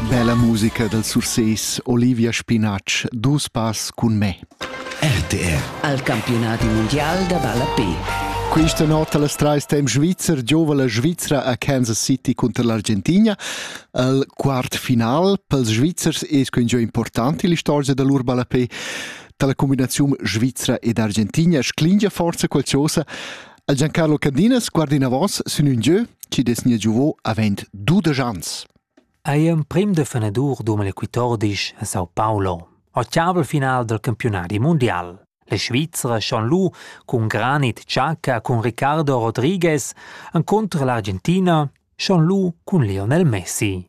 Bella musica dal Surses Olivia Spinatsch, dus pass cun me. RTR al campionati mondial da ballape. Questa notte alle trais temp Svizer giova la Svizzera a Kansas City contro l'Argentina. Il quart final per i Svizzers è quingiò importante l'istorgia da lur ballape. Dalla combinazione Svizzera ed Argentina sclingia forza qualcosa Il Giancarlo Candinas guarda inavos sin un gieu che des nia giuvo avend dudesch ans. Ei emprim defenadur d'umen equitordisch a Sao Paulo, ottavel final del campionati mondial. La Svizzera schon lu cun Granit Xhaka cun Ricardo Rodriguez encontro l'Argentina schon lu cun Lionel Messi.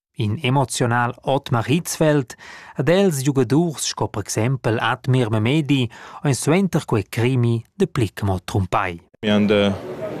In emoziunal Otmar Hitzfeld ed els giugadurs sco per exempel Admir Memedi ein suenter quei crimi de Plickemo trumpai. Wir haben äh,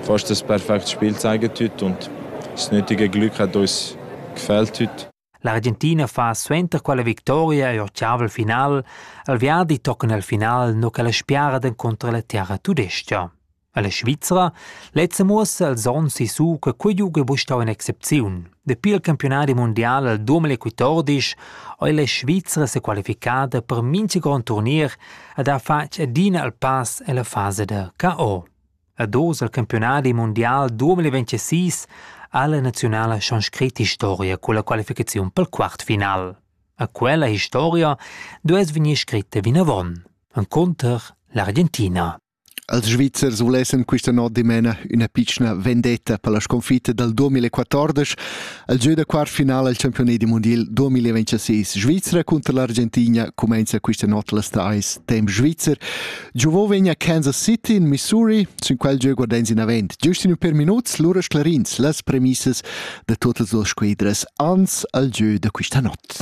fast das perfekte Spiel zeigen heute und das nötige Glück hat uns gefällt heute. L'Argentina fa suenter quella victoria e ottavel final, al viadi tocan al final no che la spiara encontra la terra tudestia. Alla Svizra lezza muossa als onns sissu che quei giug ei buca stau un'excepziun. Dapi il campionadi mondial al 2014 ei la Svizra sequalificada per mintga grond turnier ed ha fatg adina il pass ella fasa da KO. Ad oz al campionadi mondial 2026 ha la nazionala schon scrit historia con la qualificaziun pel quartfinal. A quella historia duess vegnir scritta vinavon. Enconter l'Argentina. Els Svizzers vulessan quista not dimena üna pitschna vendetta per la sconfitta dal 2014 al giö da quart finala al campiunat da mundial 2026. Svizra cunter l'Argentina cumainza quista not las trais temp svizzer. Giovò vegna Kansas City in Missouri, sün quel giö guardans inavant. Giust ün per minuts, lura sclarins las premissas da totas duas squadras ans al giö da quista not.